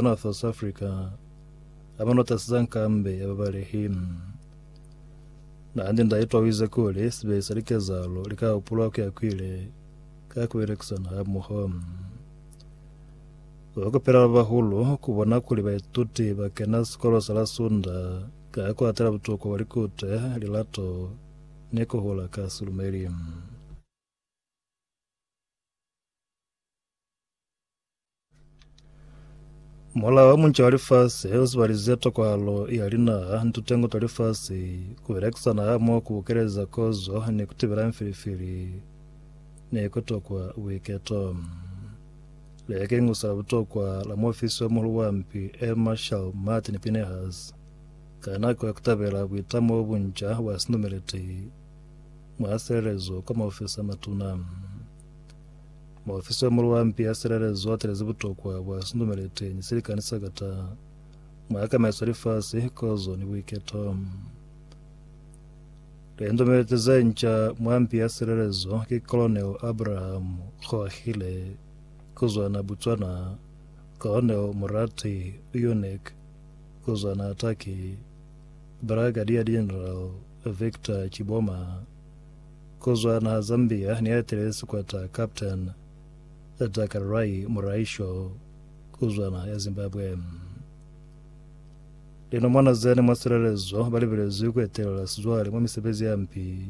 North South Africa a ba notasi za nkambe ya babalehi. Nahande nda itwa wize kuli sibehi sa likezalo li ka hupulwa ku ya kwile ka kubelekisana hamoho. Ba kupela ba bahulu ku bona kuli baituti ba kena sikolo sa la Sunda ka ku atela butuku bwa likute, lilato, ni kuhula ka silumeli. Mola wa munca wa lifasi u sibalize tokwalo ya linaha ni tutengo twa lifasi ku belekisana hamoho ku keleza kozo ni ku tibela mfilifili ne ku tokwa buiketo. Leke ingusa la butokwa la muofisi wa muhulu wa mpi Air Marshal Martin Pinehas ka nako ya ku tabela buitamo bu bunca bwa sinumeleti mwa silelezo ka maofisi a matuna. Muofisi wa Muluampi ya Silelezo a telezi butokwa bwa sindumeliteñi se likani sa kata mwa kamaiso lifasi, kozo ni buiketo. Lindumelite ze nca mwa mpi ya silelezo ki Colonel Abraham Kgoakhile, kuzwana Botswana, Colonel Morati Uyonek, kuzwana Turkey, Brigadier General Victor Chiboma, kuzwa naha Zambia ni atile sikwata Captain Takarai Muraisho kuzwa naha ya Zimbabwe. Linomwana zene mwa silelezo balibelezwi kuetelela sizwale mwa misebezi ya mpi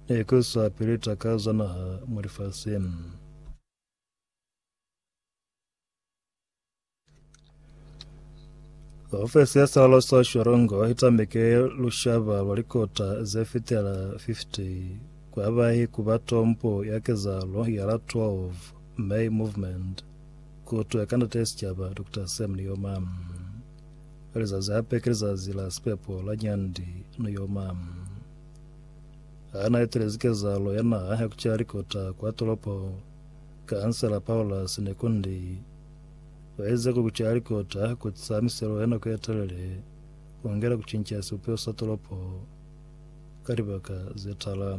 ni kuisa pili takazo za naha mwa lifasi. Ofesi ya Salo sa Shorongo i tambeke lushaba lwa likota ze fitela 50 kwa bahi ku ba tombo ya kezahalo ya la 12 May Movement, ku twa ka Ndate Sicaba Dr. Sam Nujoma. Lizazi hape ki lizazi la sipepo la Nyandi Nujoma. Ha na etelezi kezahalo ya naha ya kucali kota kwa tolopo, Kaansela Paulus Nekundi u ezize ku kucali kota ku tisa miselo ya nako ye telele ku ngela ku cinca sibupeho sa tolopo ka libaka ze tala.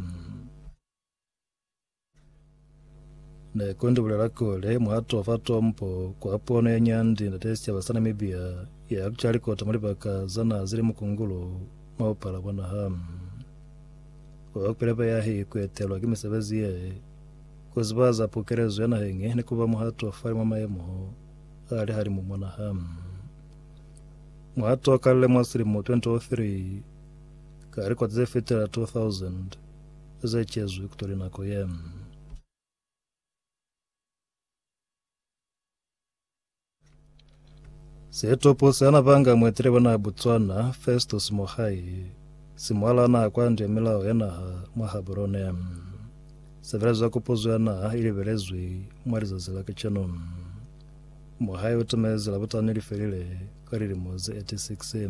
Ne kondi bulela kuli, Muhato fa tombo kwa pono ye nyandi ndate sicaba sa Namibia ya kuca likota mwa libaka za naha zili mukungulu mwa bupala bwa naha. Wa kweleba yahi kuetelwa ki misebezi ye, kuziba za pukelezo ya naheñi ni kuba muhatofali mwa mayemo a lihalimu mwa naha. Muhato o kalile mwa silimo 2003 ka likota zefitela 2,000 ze cezwi kutoli nako ye. Setopo sa na banga muetele bona Botswana, Festus Mogae, si mwala na kwandi ya milao ya naha mwa Gaborone. Sebelezo ya kopozo ya naha i lebelezwi mwa lizazi la kacenu. Mogae o tamezi Labutani li felile ka lilimo ze 86.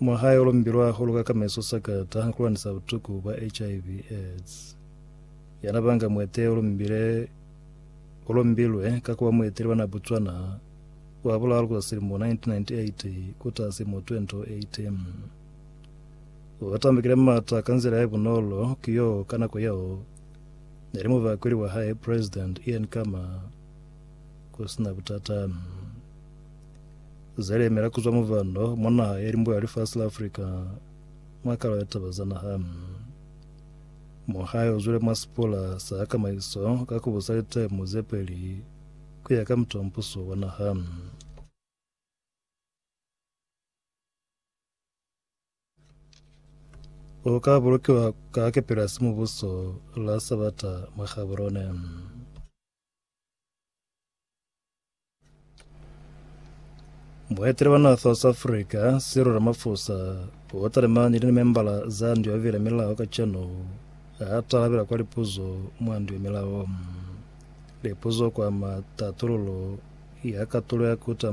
Mwa hae o lombilwe hahulu ka kameso sakata ku lwanisa butuku bwa HIV aids. Yana ba nga muete o lombile o lombilwe ka kuba mueteli wa na Botswana wa bulalu kuza silimo 1998 ku taha silimo 2018. O tambukile mata ka nzila ya bunolo ku yo ka nako yeo ne li mubakweli wa hae President Ian Khama ku sina butata. Zelemela kuzwa muvhanda mwa naha ya limbo ya lifasi la Afrika mwa kalo ya taba za naha. Muhayo uzwile mwa sipola sa hakamaiso ka kubusa litemu zepeli kuya ka muta wa mpuso wa naha. o ka bulukiwa ka kepeli ya simubuso la Sabata mwa Gaborone. Muetele wa naha South Africa Cyril Ramaphosa o talimani ni limembala za ndu ya bubili ya milao kacenu ha talabela kwa lipuzo mwa ndu ya milao lipuzo kwama tatululo ya katulo ya kuta